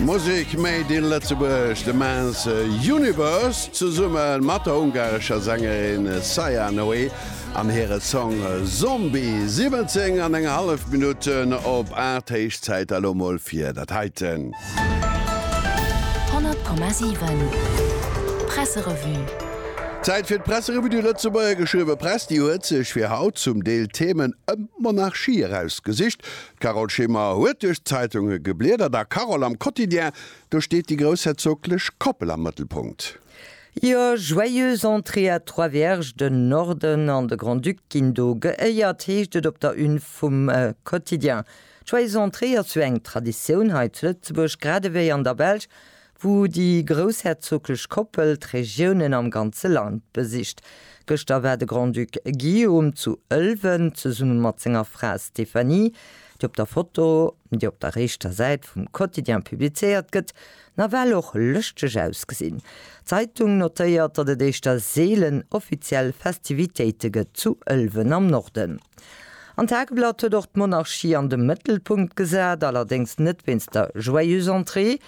Musek made in Lëtzebuerg, de Maes Universe zesumme mat der ungarescher Sängerin Saia Noé an hire Song Zombie. 17 an eng hallef Minutten op 8, héich Zäit elo mol fir dat heiten. 100,7 Presserevue. Zäit fir d'Presserevue du Lëtzebuerger Geschriwwe Press. Déi huet sech fir haut zum Deel Themen ëm d'Monarchie erausgesicht, D'Carole Schimmer huet duerch d'Zeitunge gebliedert a Carole, am Quotidien, do steet déi groussherzoglech Koppel am Mëttelpunkt. Jo, Joyeuse entrée à Trois-Vierges, den Norden an de Grand-Duc ginn do geéiert, heescht et op der Une vum Quotidien. D'Joyeuse entrée ass jo eng Traditioun hei zu Lëtzebuerg, gradewéi an der Belsch, wou déi groussherzoglech Koppel d'Regiounen am ganze Land besicht. Gëschter war de Grand-Duc Guillaume zu Ëlwen zesumme mat senger Fra Stéphanie, déi op der Foto, déi op der rechter Säit vum Quotidien publizéiert gëtt, nawell och lëschteg ausgesinn. D'Zeitung notéiert, datt et éischter seelen offiziell Festivitéite gëtt zu Ëlwen am Norden. An d'Tageblatt huet och d'Monarchie an de Mëttelpunkt gesat, allerdéngs net wéinst der Joyeuse Entrée,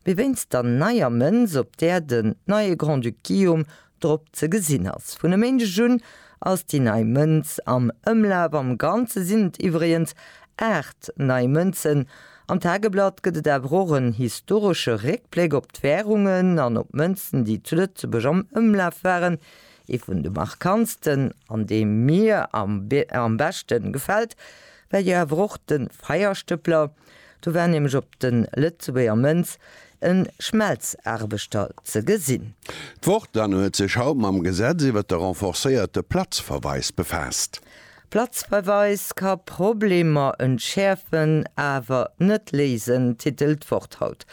Mee wéinst der neier Mënz, op där den neie Grand-Duc Guillaume drop ze gesinn ass. Vun e Méindeg un ass déi nei Mënz am Ëmlaf. Am Ganze sinn et iwwregens 8 nei Mënzen. Am Tageblatt gëtt et awer och en historesche Réckbléck op d'Wärungen an op d'Mënzen, déi zu Lëtzebuerg am Ëmlaf waren. Ee vun de markantsten, an dee mir am beschte gefält, war jo awer och de Feierstëppler. Do war nämlech op de Lëtzebuerger Mënz e Schmelzaarbechter ze gesinn. D'Wort an huet sech haut mam Gesetz iwwert de renforcéierte Platzverweis befaasst. Platzverweis ka Problemer entschäerfen, awer net léisen, titelt d'Wort haut.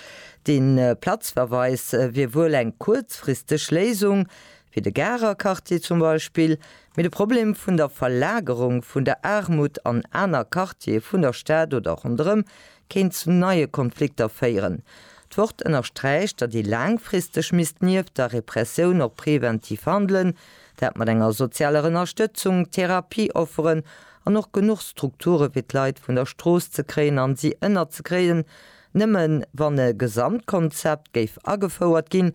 Dee Platzverweis wier wuel eng kuerzfristeg Léisung, fir de Garer Quartier zum Beispill, mee de Problem vun der Verlagerung vun der Aarmut an aner Quartiere vun der Stad oder ronderëm kéint zu neie Konflikter féieren. D'Wort ënnersträicht, datt ee laangfristeg misst nieft der Repressioun och preventiv handelen, dat mat enger sozialer Ënnerstëtzung, Therapie-Offeren an och genuch Strukture fir d'Leit vun der Strooss ze kréien a si ënnerzekréien. Nëmmen wann e Gesamtkonzept géif agefouert ginn,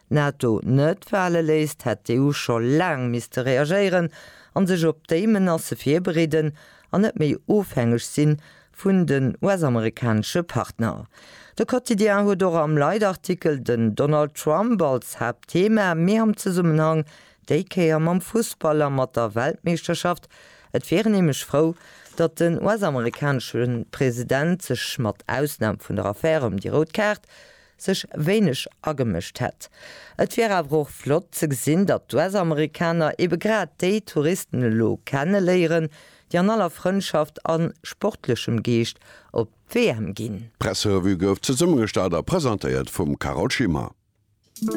D'NATO net fale léisst, hätt d'EU scho laang misste reagéieren a sech op déi Menacë virbereeden an net méi ofhängeg si vun den US-amerikanesche Partner. De Quotidien huet och am Leitartikel den Donald Trump als Haaptthema, mee am Zesummenhang déi Kéier mam Fussball a mat der Weltmeeschterschaft. Et wier en nämlech frou, datt den US-amerikanesche President sech, mat Ausnam vun der Affär ëm déi rout Kaart, sech wéineg agemëscht hätt. Et wier awer och flott ze gesinn, datt d'US-Amerikaner ebe grad déi Touristen elo kenne léieren, déi an aller Frëndschaft a sportlechem Geescht op d'WM ginn. D'Presserevue gouf zesummegestallt a presentéiert vum Carole Schimmer.